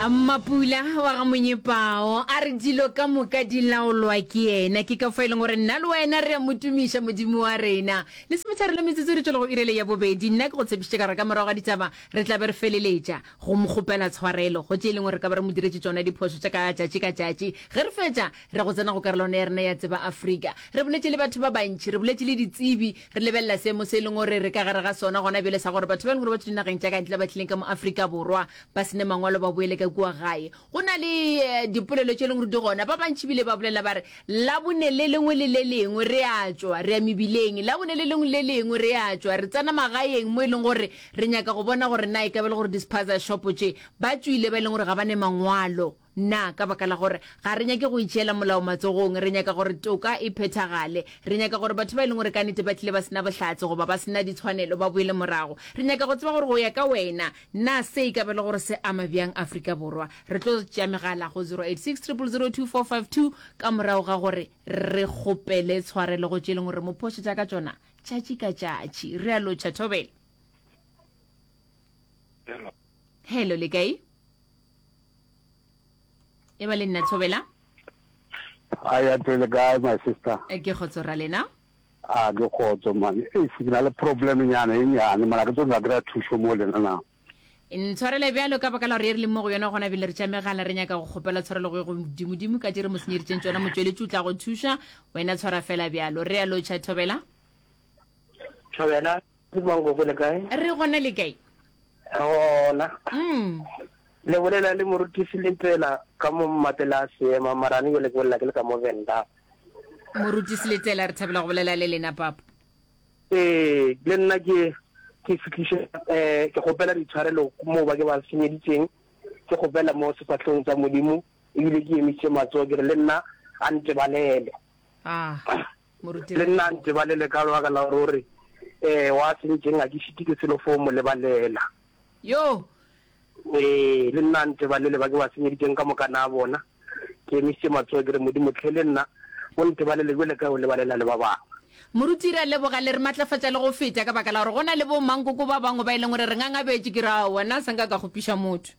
Mmapula wa ga Monyepao a re dilo ka moka di laolwa ke yena. Ke ka fo e leng gore nna le wena re a mo tumiša Modimo wa rena. Le semetšhare le metsotso re tšwela go irele ya bobedi. Nna ke go tshepišitše ka gore ka morago ga ditaba re tla be re feleletša go mo kgopela tshwarelo go tše e leng gore re ka ba re mo diretše tšona diphošo tša ka tšatši ka tšatši. Ge re fetša re go tsena go karolwana ya rena ya Tseba Afrika. Re boletše le batho ba bantši, re boletše le ditsebi Re lebelela seemo se e leng gore re ka gare ga sona gona bjale sa gore batho ba e leng gore ba tswa dinageng tša ka ntle ba tlileng ka mo Afrika Borwa ba sene mangwalo ba boele ka kua gae. Go na le eh, dipolelo tše e leng gore di gona. Ba bantši bile ba bolela ba re labone le lengwe le le lengwe re a tšwa re ya mebileng, labone le lengwe le le lengwe re a tšwa re tsena magaeng mo e leng gore re nyaka go bona gore na e ka be e le gore di-spaza shopo tše ba tšwile ba e leng gore ga ba ne mangwalo. Na ka baka la gore ga re nyake go itšeela molao matsogong, re nyaka gore toka e phethagale? Re nyaka gore batho ba e leng gore ka nete ba tlile ba se na bohlatse goba ba se na ditshwanelo ba boele morago? Re nyaka go tseba gore go ya ka wena, na se e ka ba e le gore se ama bjang Afrika Borwa? Re tlo tšea megala go 0860002452 ka morago ga gore re kgopele tshwarelo go tše e leng gore re mo phošetša ka tšona tšatši ka tšatši. Re a lotšha, Thobela. Hello, le kae? e ba le nna thobela a ya tele kae my sister eh, ke kgotso ra lena a ke kgotso man e eh, ke na le problem nyana e nyane mana ke tlo nka kry-a thuso mo lena na ntshwarele bjalo ka baka la gore e re le mo go yona gona bile re tša megala re nyaka go kgopela tshwarelo go ye godimodimo ka dire mo senyeditseng tsona motsweletši o tla go thuša wena tshwara fela bjalo re ya lotšha thobela thobela Good morning gogo le kae? Re gona le kae? Re gona. Mm. Le bolela le morutisi le tsela ka mo mmatela a seema marane yo le ke bolela ke le ka mo venda. Morutisi le tsela re thabela go bolela le lena papa. Ee, le nna ke ke fitlhise eh ke gopela ditshwarelo mo ba ke ba senyeditseng. Ke gopela mo sefatlhong tsa Modimo ebile ke emise matsogo ke re le nna a ntebalele. Ah. Moruti. Le nna nteba le le ka lebaka la gore o re, Ee, wa sentšeng ga ke šite ke selo fo mo lebalela. Yoo! Ee, le nna nteba le le ba ke ba senyeditšeng ka moka na bona. Ke emišitše matsogo ke re, Modimo, hle le nna o nteba le le bjale ka o lebalela le ba bangwe. Moruti. Re a leboga, le re matlafatša le go feta ka baka la gore go na le bo-mankoko ba bangwe ba e leng gore re ngangabetše. Ke re, Aowa, nna se nka ka kgopiša motho.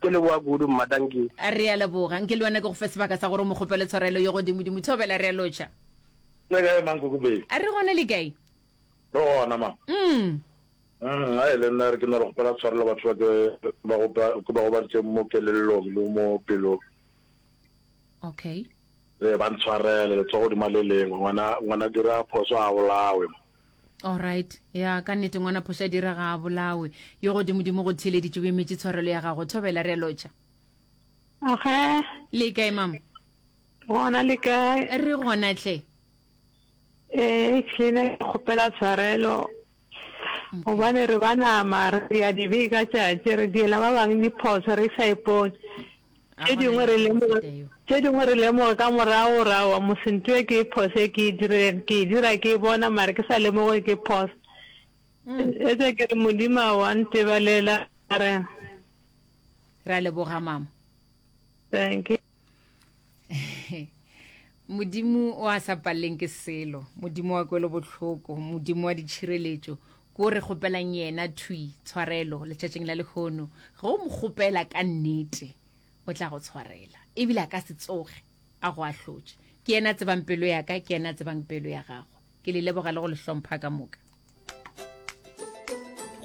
Ke leboga kudu mma thank you. Re a leboga nke le wena ke go fe sebaka sa gore o mo kgopele tshwarelo ye godimo dimo thobela re a lotšha. Le kae mang kuku baby? A re gona le kae? Re gona mang? Umm. Umm a e le nna re ke na le kgopela tshwarelo batho ba ke ba go ba ke ba go ba ntse mo kelellong le mo pelong. Okay. Ee ba ntshwarele letsogo di maleleng ngwana ngwana dira phoso a bolawe. Alright, ya ka nnete ngwana phoša dira ga a bolawe. Yo godimodimo go theeleditše o emetše tshwarelo ya gago. Thobela re a lotšha. Oge. Le kae mama? Gona le kae? Re gona tle. Eh, kile kgopela tshwarelo. Gobane re ba nama re ya dibe ka tšatši re diela ba bang diphoso re sa ipone. Tše dingwe re lemoga, tše dingwe re lemoga ka morago ra wa mose nto ye ke e phoso e ke e dirileng, ke e dira ke e bona mare ke sa lemoge ke phoso. Mm. Etsa ke re Modimo wa ntebalela re. Ra leboga mama. Thank you. modimo o a sa paleleng ke selo modimo wa kwelo botlhoko modimo wa ditšhireletšo Ke o re kgopelang yena thwi, tshwarelo, letšatšing la lehono. Ge o mo kgopela ka nnete, o tla go tshwarela. E bile a ka se tsoge a go ahlotše. Ke yena a tsebang pelo ya ka, ke yena a tsebang pelo ya gago. Ke le leboga le go le hlompha ka moka.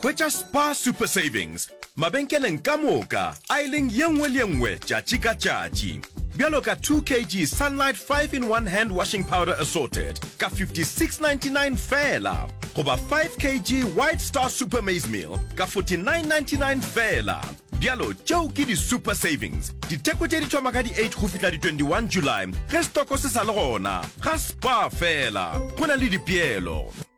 Hwetša Spar Super Savings mabenkeleng ka moka. Aileng ye nngwe le ye nngwe tšatši ka tšatši. Bjalo ka 2 kg Sunlight 5 in 1 Hand Washing Powder Assorted ka 56.99 feela goba 5 kg White Star Super Maize Meal ka 49.99 feela. Bjalo tšeo ke di Super Savings. Ditheko tše di thoma ka di 8 go fihla di 21 July ge stoko se sa le gona. Ga Spar feela go na le dipeelo.